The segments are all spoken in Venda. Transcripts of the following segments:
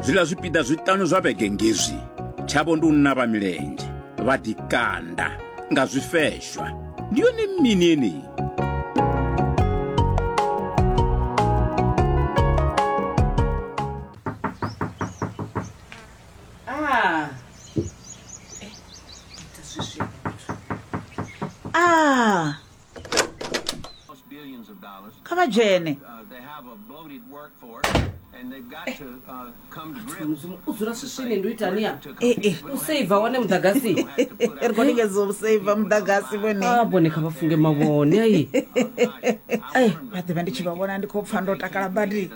zwiḽa zwipiḓa zwiṱanu zwa vhege ngezwi tshavho ndi u navha milenzhe vha ḓikanda nga zwifeshwa ndi yone mini yeneyi kha vha dzhene usaiva wane muḓagasi ri khou lingedza u saiva muḓagasi vhone a vhone kha vha funge mavhone ai ai vha ḓivha ndi tshi vha vhona ndi khou pfha ndo takala badi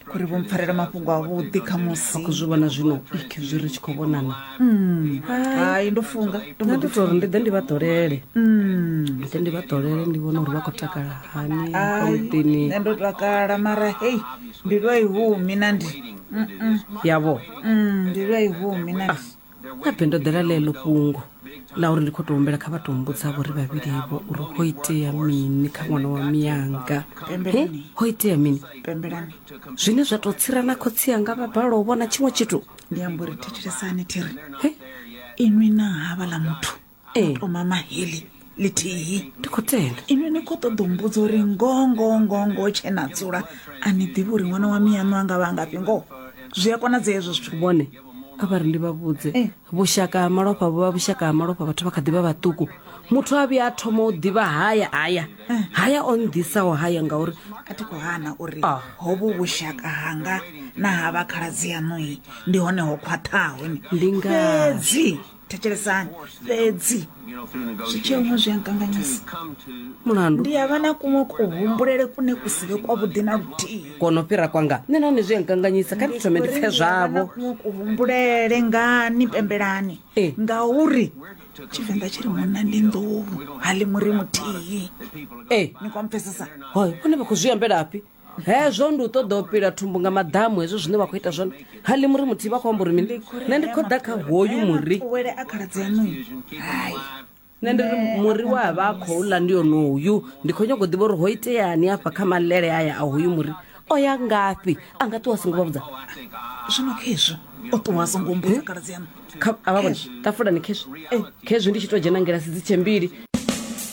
khori vho mpfarela mafhungo avhuḓi kha musi khou zwi vhona zwino ik zwi ri tshi khou vhonana hmm. hai ndo funga ndo mbo ḓi tori ndi ḓe ndi vha ḓolele hmm. ndi ḓe ndi vha ḓolele ndi vhona uri vha khou takala hani amuḓini nṋe ndo takala mara hei mbilu a i humi na ndi yavho hmm, mbilu a i humi na ndi ah. habe ndo ḓela ḽeḽo fhungo ḽa uri ndi khou tou humbela kha vha tou mbudzavho ri vhavhilivo uri ho itea mini kha ṅwana wa miyanga he ho itea mini zwine zwa tou tsira na khotsi anga vha bala u vhona tshiṅwe tshithu ndi amba uri thetshelesani thiri inwi na havha ḽa muthu ee to mama heḽi ḽithihi ndi khou tenda inwi ni khou ṱoḓa u mbudza uri ngoho ngoho ngoho ngoho tshe na dzula a ni ḓivhi uri ṅwana wa miyaṋu a nga vha a ngafhi ngoho zwi a konadzea hezwo zwithu vhone a vha ri ndi vha vhudze Eh. vhushaka ha malofha vhu vha vhushaka ha malofha vhathu vha kha ḓi vha vhaṱuku muthu a vhuya a thoma u ḓivha haya haya Eh. haya o nnḓisaho haya ngauri a thi khou hana uri Ah. hovhu vhushaka hanga na ha vha khaladzi yaṋui ndi hone ho khwaṱhaho ni Ndi ngazwo. fhedzi thetshelesani fhedzi zwitsheuno zwi a nkanganyisa mulandu ndi ya vha na kuṅwe kuhumbulele kune ku si vhe kwavhuḓi na luthihi kono fhira kwanga nṋe nahone zwi a nkanganyisa kha ndi thome ndi pfe zwavho kuṅwe kuhumbulele ngani pembelani Eh. ngauri tshivenḓa tshi ri munna ndi nḓou ha ḽi muri muthihi ee ni kwampfesesa hoyo vhone vha khou zwi ambelafhi hezwo ndi u ṱoḓa u pila thumbu nga maḓamu hezwo zwine vha khou ita zwone ha ḽi muri muthihi vha khou amba uri mini nṋe ndi khou ḓa kha hoyu muri wele a khaladzi aṋu hai nṋe ndi ri muri wa vha a khou ḽa ndi onoyu ndi khou nyanga u ḓivha uri ho iteani afha kha malele aya a hoyu muri o ya ngafhi a nga ṱuwa a songo vha vhudza zwino khezwo o ṱuwa a songo mbudza khaladzi aṋu Kha- a vha vhona tafulani khezwi khezwi ndi tshi tou dzhena ngilasi dzi tshe mbili